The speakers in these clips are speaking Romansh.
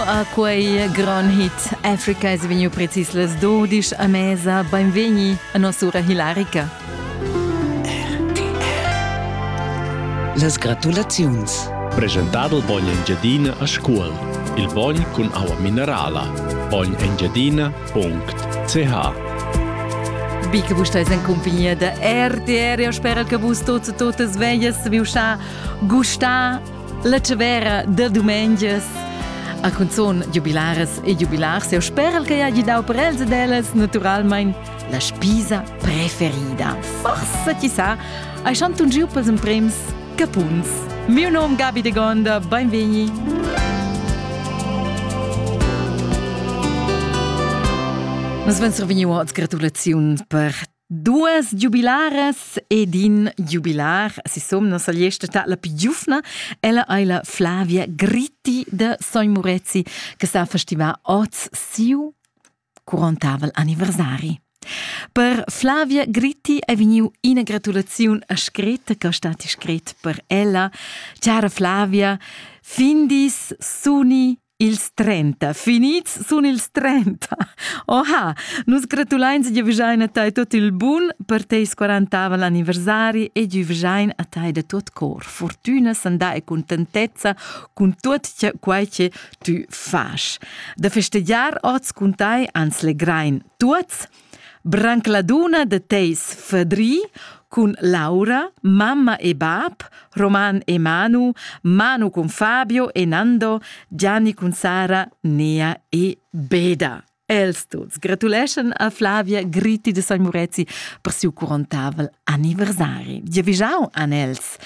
A quei gran hit Africa es vegniu precis las 12 a mesa. Beinvegni a noss'ura hilarica. Las gratulaziuns. Presentado il bogn Engiadina a scuol. Il bogn cun aua minerala. bognengiadina.ch Bi che vus steis en compagnia da RTR, eu sperel che vus tots e totas veies, viu scha gustà La tavera da dumengias a cunzun jubilares e jubilars eu speral che hagi dau per els ed ellas naturalmein la spisa preferida. Forsa chi sa, hai chantun giu pels emprems capuns. Miu nom Gabi de Gonda, beinvegni. Nus vens survegniu oz gratulaziun per Duas giubilares ed in giubilar, sisom non sagliesta ta la più giufna, ella ei la Flavia Gritti de Sogn Murezi, che sa festivà oz siu 40 anniversari. Per Flavia Gritti è vegniu ina gratulaziun a scretta che stati scret per ella. Cara Flavia, findis, suni Ils 30. Finids sun ils 30. Oha, nus gratulains e giavüschain a tai tot il bun per teis quarantavel anniversari e giavüschain a tai da tot cor fortüna, sandà e contentezza cun tuot quai che tü fas. Da festegiar oz cun tai ans legrain tuots Branc la dunna da teis fadri cun Laura, mamma e bab, Roman e Manu, Manu cun Fabio e Nando, Gianni cun Sara, Nea e Beda. Els tuts gratuleschan a Flavia Gritti de San Murezi per siu curontavel anniversari. Giavischau an els.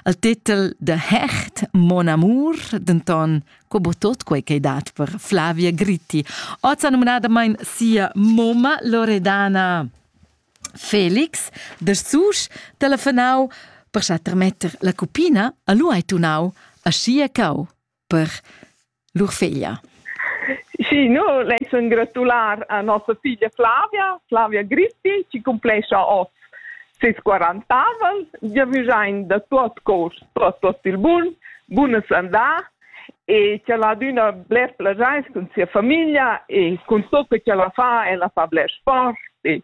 El titel de Hecht, Mon amour, denton co bo tot quei ch'ei dat per Flavia Gritti. Oz ha numnadamain sia mumma Loredana. Felix, da sus, telefonau per sa trametter la cupina a lu hai tunau a sia cau per lur feglia. Sì, no, lei sun gratular a nossa figlia Flavia, Flavia Gritti, ci cumplescha oz seis quarantavel, giavüschain da tuot cours, tuot, tuot il bun, bunas andà e ch'el ha adüna bler plaschair cun sia famiglia e cun tot que ch'el fa, el fa bler sport e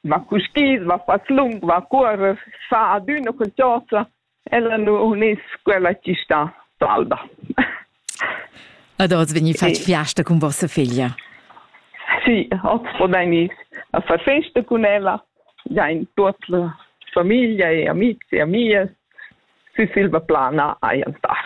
va cuschiz, va fat lung, va a cuorrer, fa adüna qualchosa Ella nu unis quella chi sta d'alba. Ad oz vegni fatg fiasta cun vossa figlia? Sì, hoz podain gnir a far festa cun ella, giain tuot la famiglia e amici e amias, sü silva plana hajan star.